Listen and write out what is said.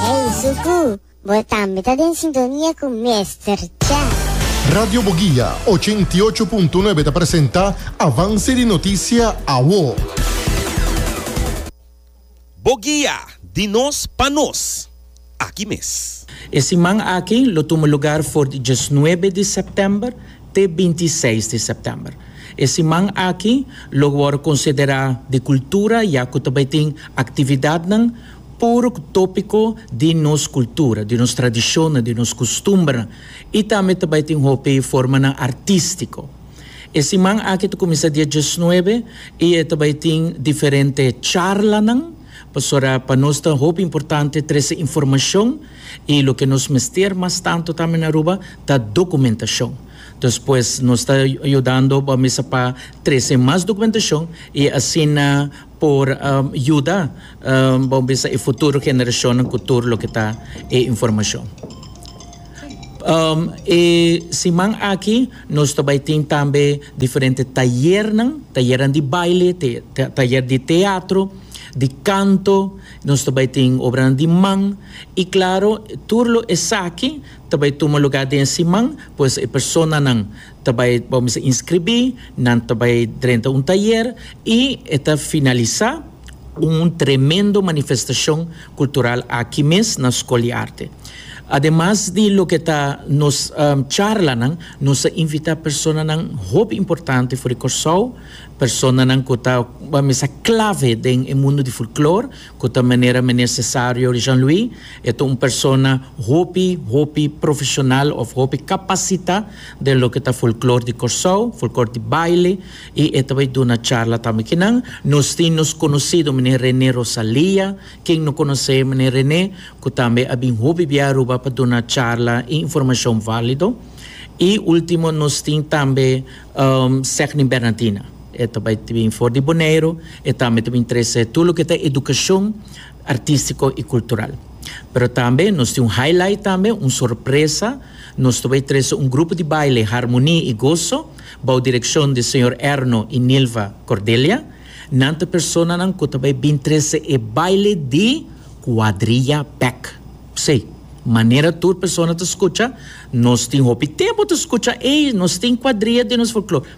Ey Suku, bo tambe ta den sintonia cu Mester Cha. Radio Boguia, ochenta i ocho punto nuebe ta presenta Avance di Noticia Awo. Boguia, di nos pa nos, aki mes. E siman aki lo tuma lugar for di diesnuebe di sèptèmber te binti i seis di sèptèmber. E siman aki lo wòrdu konsiderá di kultura ya ku ta bai tin aktividatnan puru ku tópiko di nos kultura, di nos tradishonnan, di nos kustumbernan i tambe ta bai tin hopi formanan artístiko. E siman aki ta kuminsá dia diesnuebe i e ta bai tin diferente charlanan pasobra pa nos ta hopi importante trese informashon i loke nos mester mas tantu tambe na Aruba ta dokumentashon. Entonces pues nos ta yudando bo mesa pa trese mas dokumentashon i asina. por yuda bo bisa e futuro generashonnan ku tur loke ta e informashon. E siman aki nos ta bai tin tambe diferente tayernan, tayernan di baile, tayer di teatro, di kanto, nos ta bai tin obranan di man, i klaro tur lo esaki ta bai tuma lugá den e siman, pues e personanan. Ta bai bo mester inskribí, nan ta bai drenta un tayer i e ta finalisá un tremendo manifestashon kultural aki mes na Skol di Arte. Ademas di loke ta nos charlanan, nos a invitá personanan hopi importante for di Kòrsou, personanan ku ta mester klave den e mundu di folklor, Cu ta manera Meneer Cesario Jean-Louis e ta un persona hopi, hopi profesional of hopi capacita den loke ta folklor di Corsou, folklor di baile y e ta bay duna charla tambe ki nan. Nos tin nos conocido Meneer Rene Rosalia, ken no conoce Meneer Rene, cu tambe a bin hopi bia Aruba pa duna charla y informacion valido. Y ultimo nos tin tambe Segni Bernadina. E ta bai ta bin for di Boneiru, e tambe ta bin trese tur loke ta edukashon artistiko i kultural. Pero tambe nos tin un highlight tambe, un sorpresa, nos ta bai trese un grupo di baile Harmoni i Goso bou direkshon di señor Erno i Nilva Cordelia. Nan ta personanan ku ta bai bin trese e baile di kuadriya bek. Sí, manera tur persona ta skucha, nos tin hopi tempu ta skucha, ey, nos tin kuadriya den nos folklor.